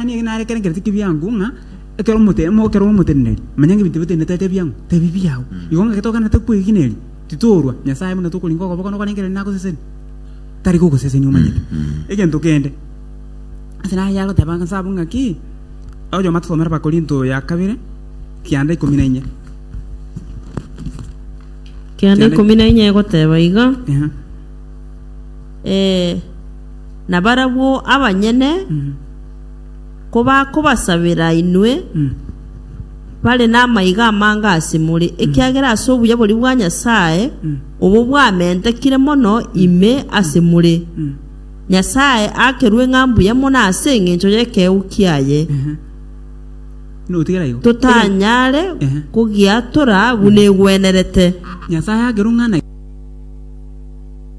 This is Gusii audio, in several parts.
Mani eke nare ekerengererio ki'ebiango, ng'a ekero omote- mo- ekero omoteneneri amanya ng'a ebinto bitenenete aete ebiango, tebi biao. Igo ng'a eke toganete kwegineria, titorwa Nyasae buna tokoringa okoboka nokorengereria na gosesenia. Tari gogosesenia omanyete egento kende. Ase naki agoteba ng'a sabu ng'aki, oyoma tosomere Abakorinto ya kabere, kianda ikomi na inye. Kianda ikomi na inye egoteba iga, Eeh. Ee, nabarabwo abanyene kobakobasabera inwe bare namaiga amange ase more, ekiagera ase obuya boria bwa Nyasae obo bwamentekire mono ime ase more. Nyasae akerwe ng'a mbuya mono ase engencho y'ekeegwa kiaye, totanyare kogiatora buna egwenerete.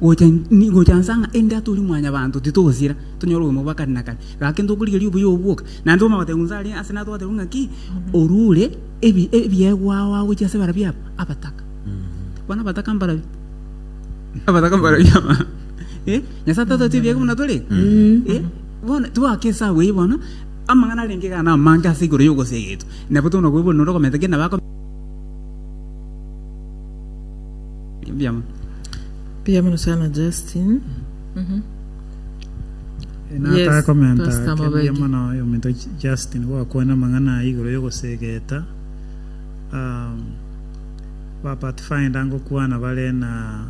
gocha ni- gocha nsa ng'a ende atori mwanyabanto titogosira tonyore obogima bwa kare na kare gaki ntokorigeria obuya obwo bwoka naende toma gotebiwa nse aria ase natwe gotebiwa ng'aki orure ebi- ebiegwa ao agochia ase barabwo aba abataka bono abataka mbarabwo abataka mbarabwo aba eh nyasae tatoti ebiegwa buna tore eh bono tigoaka esabu eyio bono amang'ana arenge iga na amange ase igoro yogoseegeta nabo tona koigwa norokomenta ki nabo ako. Mbuyamono sana Justin. Nataka komenta kebia mono ominto Justin gwakwana amang'ana aya igoro y'ogosegeta um, ba Pathfinder ngokwana bare na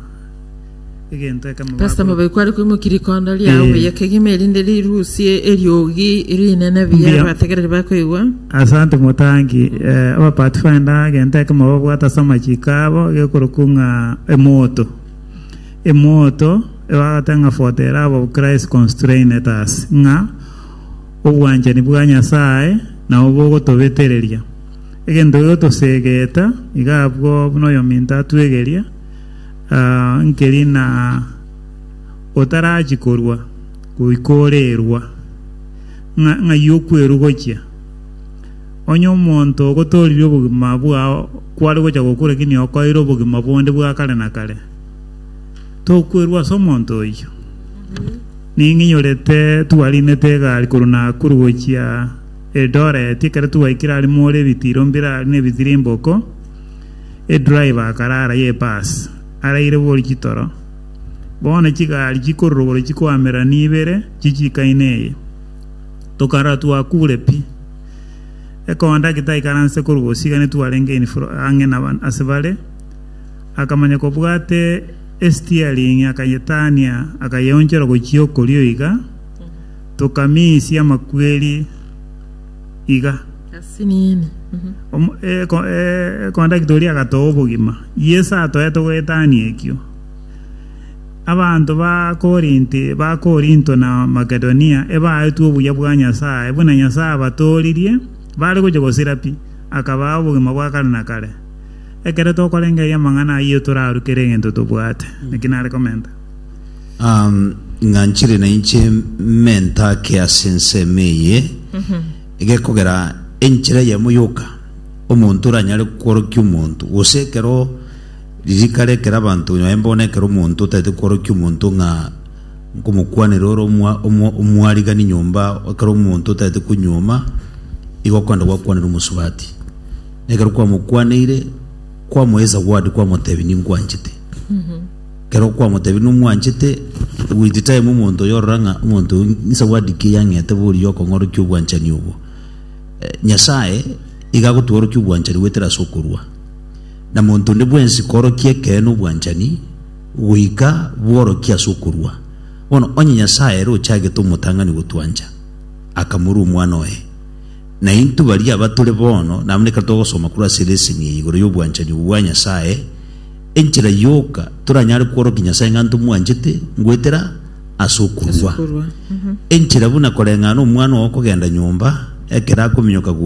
egento ekemo Pastor Mabei kwari kwimukira ikondo riao buya kegima erinde rirusie eriogi rinene buya abategereri bakoigwa Asante motangi. Eh, aba Pathfinder agenta ekemo babwata ase amachiko abo gekorokwa ng'a emoto. Emoto ebagata ng'a foto ere abo Christ constrained us ng'a obwanchani bwa Nyasaye nabo bogotobetereria. Egento gigotosegeta iga abwo buna oyominto atwegeria uh, nkeri na otarachi korua goika orerwa. ng'a ng'ai okwerugochia. Onye omonto ogotooririe obogima bwao kware gocha gokwa lakini okoeire obogima bonde bwa kare na kare, tokwerwa ase omonto oyio. Ning'inyorete twarinete egari korwa Nakuru gochia Eldoret, ekero twaikire aria more ebitiro mbirari na ebitirimboko, edriver akarara ye bus, araire bori chitoro. Bono chigari chikororogoro chikoamera nibere chichiika ime eye, tokarora twakuure pi. Ekondaki taikaranse korwa bosio iga netwarenge in fro ang'e na ba- ase bare, akamanya kobwate estiering akayetania akayeonchora gochia okorio iga, tokamisia amakweri iga. Asiniini. Omo- eko- e- ekondaki toria agatoa obogima. Yeso atoete goetania ekio. Abanto ba Korinti ba Korinto na Makedonia ebaetwe obuya bwa Nyasae, buna Nyasae abatoorerie, bare gochia gosira pi, akabaa obogima bwa kare na kare. Ekero tokorengereria amang'ana ayio toraruke ere egento tobwate. Naki nare komenta. Um, ng'a nchire nainche menta ake ase ensemo eye egekogera enchera yamo yoka omonto oranyare kworokia omonto, gose ekero Ririkana ekero abanto onye baye bono ekero omonto otaete kworokia omonto ng'a nkomokwanera ore omwarigani nyomba, ekero omonto otaete konyuoma, igo okorenda gwakwanera omosubati. Na ekero kwamokwaneire, kwamoa esawadi kwamotebia ninkwanchete. Ekero okwamotebia nomwanchete, with time omonto oyio orora ng'a omonto oyio nesawadi ki eyang'ete boria oyio okong'orokia obwanchani obwo. Nyasaye iga agotworokia obwanchani goetera ase okorua. na monto onde bwensi koorokia ekeene obwanchani goika bworokia ase okorua. Bono onye Nyasae ere ochagete omotang'ani gotwancha, akamorua Omwana oye, na intwe baria abatore bono nabana ekero togosoma korwa ase leseni eye igoro y'obwanchani obwo bwa Nyasae, enchera yoka toranyare kworokia Nyasae ng'a ntomwanchete ngoetera ase okorua. Enchera buna koreng'ana omwana oo kogenda nyomba ekero akominyoka gocha.